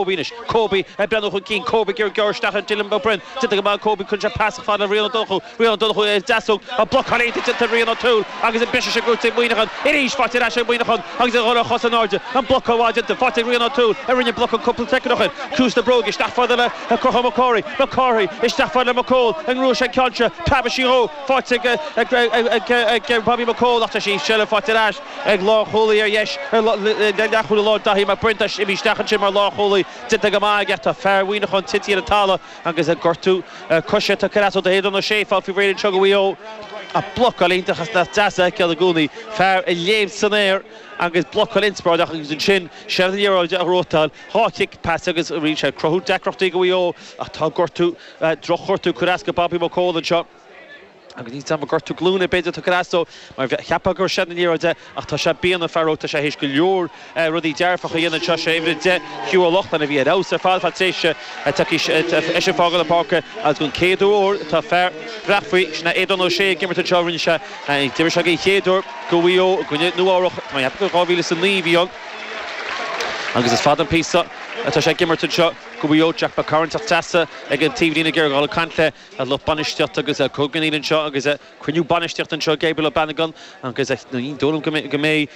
Kobe anois. Kobe ag breathnú chun cinn. Kobe ag iarraidh gearradh isteach ar Dylan Ó Broin. Déanta go maith ag Kobe, cuireann sé pas isteach fad le Riain Ó Donnchú. Riain Ó Donnchú ar a dheasóg ach blocáil iontach déanta ag Riain Ó Tuathail agus an briseadh sin gnóite ag Muineachán. Arís faighte ar ais ag Muineachán agus iad ar chosa in airde. An blocáil mhaith déanta. Faighte ag Riain Ó Tuathail a rinne an blocáil cúpla soicind ó shin. Ciumhais na bróige isteach fad le Conchúr Mac Cárthaigh. Mac Cárthaigh isteach fad le McCaul an ngnóthóidh sé an ceann seo. Preab dheas dhó. Faighte ag Bobby McCaul ach tá sí ag seilbh. Faighte ar ais. ag lánchúlaí ar dheis le leathchúlaí láir Daithí Mac Briain imithe isteach ansin mar lánchúlaí déanta go maith aige ach tá fear Mhuineacháin tite ar an talamh agus aige gortú coise tugtha trasna do Aodán Ó Sé fág faoi réir anseo go Mhaigh Eo ach blocáil iontach is deas a fheiceáil i gcónaí fear ag léim san aer agus blocáil inspioráideach agus ansin séard an liathróid a rotháil dhá chic pas agus rinne sé cruthú deacrachtaí go Mhaigh Eo ach tá gortú drochghortú ag cur as go Bobby McCaul anseo. Ach ní teanga gortú glúine é b'fhéidir atá ag cur as dó, mar cheapfá gur séanadh an liathróid é, ach tá sé bíonna, fear óg, tá sé théis go leor rudaí dearfacha a dhéanamh anseo, sé uimhir a deich, Hugh O'Loughlin a bhí ar fheabhas ar fad ar feadh tréimhse ach tá seisean ag fágáil na páirce agus den chéad uair tá fear Bhréachmhaí, sin é Aodán Ó Sé ag imirt anseo, rinne sé, d'imir sé den chéad uair do Mhaigh Eo i gcoinne Nua Eabhrach, tá mé ag ceapadh gur dhá mhíle is a naoi a bhí ann, agus is fada an píosa atá sé ag imirt anseo do Mhaigh Eo, Jack McCarron ag teacht isteach thíos ag an taobhlíne, Ger Ghal ag caint le. An lucht bainistíochta agus cogarnaíl anseo agus cruinniú bainistíochta anseo, Gabriel Ó Banagáin agus ní dóigh liom go mbeidh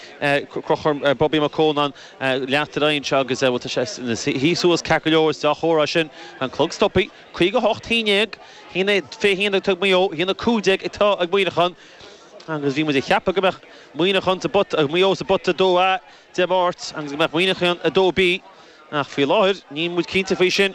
Conchúr, Bobby McCaul in ann leanacht ar aghaidh anseo agus bhuel tá sé ina shuí suas ceart go leor, is dea-chomhartha é sin. An clog stoptha. Caoga hocht haon déag. Haon a fiche haon ag Maigh Eo, haon a cúig déag ag Muineachán agus bhí muid ag ceapadh go mbeadh Muineachán sa bpota, Maigh Eo sa bpota 2A Dé Máirt agus go mbeadh Muineachán 2B ach faoi láthair níl muid cinnte faoi sin.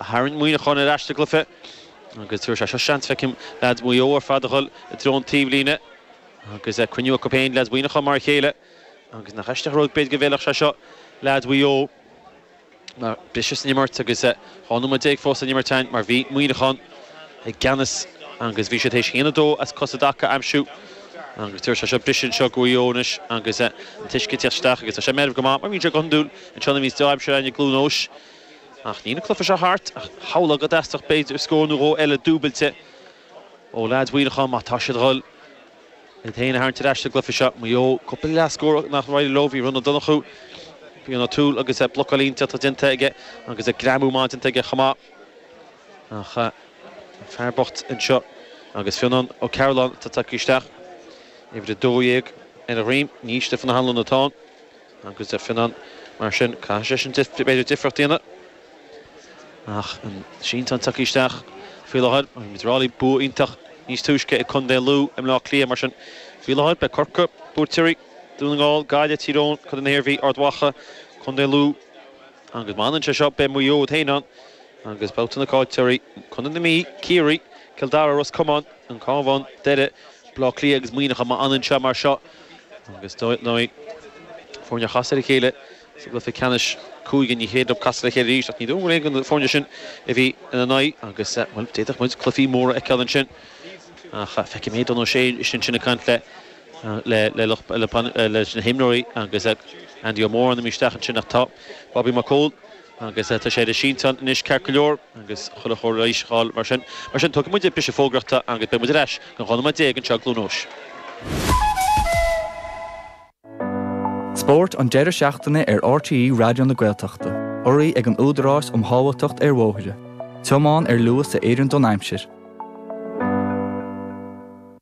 Tharraing Muineachán ar ais sa gcluiche agus tabharfaidh sé seo seans, feicim, leaids Mhaigh Eo ar fad a dhul i dtreo an taobhlíne agus cruinniú acu féin, leaids Mhuineacháin, mar a chéile. Agus nach aisteach an rud, b'fhéidir, go bhfeilfeadh sé seo leaids Mhaigh Eo mar briseadh san imirt agus 12 nóiméad fós le n-imirt ann mar bhí Muineachán i gceannas agus bhí siad tar éis haon a dó as cosa i dtaca a aimsiú agus tabharfaidh sé seo briseadh anseo go Mhaigh Eo anois agus an t-uisce ag teacht isteach agus tá sé meirbh go maith mar bhíonn sé go hiondúil anseo nuair a bhíonns deá-aimsir ann i gCluain Eois. Ach níl an cluiche seo thart ach shamhlófá go dteastódh b'fhéidir scór nó dhó eile dúbailte ó leaids Mhuineacháin má tá siad dhul iad féin a tharraingt ar ais sa gcluiche seo. Maigh Eo, cúpla leathscór nár éirigh leo, bhí Riain Ó Donnchú, bhí Riain Ó Tuathail agus blocáil iontach déanta aige agus greamú maith déanta aige chomh maith. Ach an fear bocht anseo agus Fionán Ó Cearoláin atá tagtha isteach, uimhir 12 ar a dhroim, ní hea, Stiofán Ó hAnluain atá ann. Agus deir Finan, mar sin, caithfidh sé sin b'fhéidir difríocht a dhéanamh. Ach an sínteán tagtha isteach faoi láthair, is ar ndóigh bhí bua iontach níos túisce ag Contae Lú i mBleá Cliath, mar sin, faoi láthair, beidh Corcaigh, buaiteoirí, Dún na nGall, Gaillimh, Tír Eoghain, Co. na hIarmhí, Ard Mhacha, Co. Lú, agus má fhanann sé seo, beidh Maigh Eo iad féin ann, agus babhta na caillteoirí, Co. na Mí, Ciarraí, Cill Dara, Ros Comáin, an Cabhán, Doire, Bleá Cliath agus Muineachán, má fhanann sé mar seo. Agus dar ndóigh, foirne a chas ar a chéile sa gcluiche ceannais cúige, níl cead acu casadh le chéile arís, ach ní dóigh go raibh aon na foirne sin a bhí ina n-aghaidh agus, bhuel, d'fhéadfadh muid cluifí móra a fheiceáil ansin. Ach feicim Aodán Ó Sé ansin ag caint le lucht, leis na himreoirí agus Andy Moran isteach ansin ach tá Bobby McCaul, Agus tá sé ar an sínteán anois ceart go leor, agus chuile chóir leighis a fháil mar sin. Mar sin, tógfaidh muid briseadh fógraíochta agus beidh muid ar ais i gceann 12 nóiméad anseo i gCluain Eois. Spórt an deireadh seachtaine ar RTÉ Raidió na Gaeltachta, urraithe ag an Údarás um Shábháilteacht ar Bhóithre, tiomáin ar luas a oireann don aimsir.